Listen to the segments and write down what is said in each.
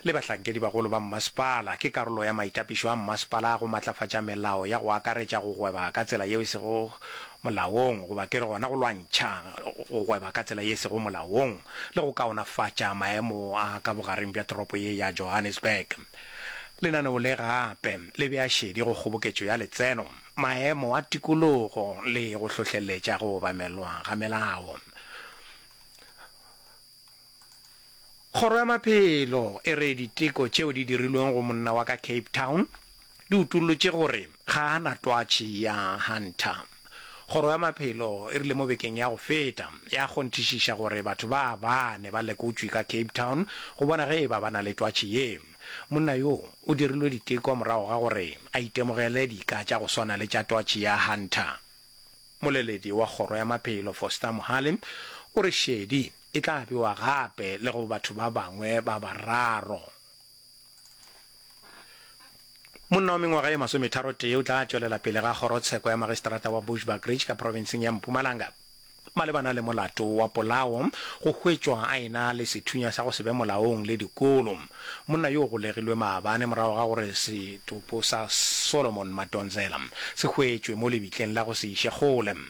le bahlankedibagolo ba mmasepala ke karolo ya maitapišo a mmasepala a go matlafatša melao ya go akaretša go gweba ka tsela yeo e sego molaong goba ke re gona go lwantšha go gweba ka tsela ye e sego molaong le go kaonafatša maemo a ka bogareng bja toropo ye ya Johannesburg. Lenaneo le gape le bea šedi go kgoboketšo ya letseno, maemo a tikologo le go hlohleletša go obamelwa ga melao. Kgoro ya Maphelo e re diteko tšeo di dirilweng go monna wa ka Cape Town di utollotše gore ga a na twatši ya Hunter. Kgoro ya Maphelo e rile mo bekeng ya go feta ya kgonthišiša gore batho ba bane ba lekotšwe ka Cape Town go bona ge e ba ba na le twatši ye. Monna yo o dirilwe diteko morago ga gore a itemogele dika tša go swana le tša twatši ya Hunter. Moleledi wa Kgoro ya Maphelo Foster Mohale o re šedi E tla bewa gape le go batho ba bangwe ba bararo. Monna wa mengwaga ye masometharotee o tla tšwelela pele ga kgorotsheko ya magistrata wa Bushbuckridge ka profenseng ya Mpumalanga malebana le molato wa polao go hwetšwa a ena le sethunya sa go se be molaong le dikolo. Monna yo o golegilwe maabane morago ga gore setopo sa Solomon Madonsela se hwetšwe mo lebitleng la go se iše kgole.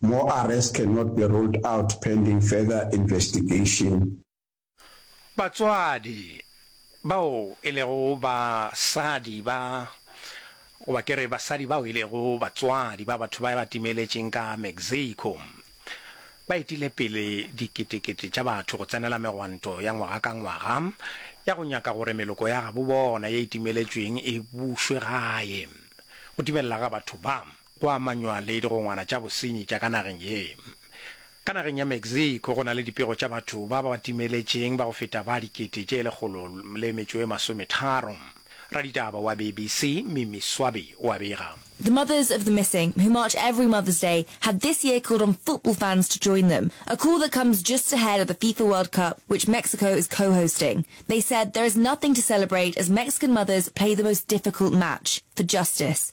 More arrests cannot be ruled out pending further investigation. Batswadi bao e lego basadi ba, goba ke re basadi bao e lego batswadi ba batho ba ba timeletšeng ka Mexico, ba etile pele diketekete tša batho go tsenela megwanto ya ngwaga ka ngwaga ya go nyaka gore meloko ya gabo bona ye e timeletšweng e bušwe gae go timelela ga batho ba. go amanywa le digongwana tša bosenyi tša ka nageng ye. Ka nageng ya Mexico go na le dipego tša batho ba ba timeletšeng ba go feta ba dikete tše lekgolo le metšo e masometharo. Raditaba wa BBC Mimi Swaby o a bega. The mothers of the missing, who march every Mother's Day, have this year called on football fans to join them, a call that comes just ahead of the FIFA World Cup, which Mexico is co-hosting. They said there is nothing to celebrate as Mexican mothers play the most difficult match, for justice.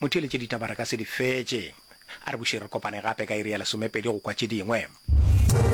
Motheeletše ditaba re ka se di fetše. A re bušeng re kopane gape ka iri ya lesomepedi go kwa tše dingwe.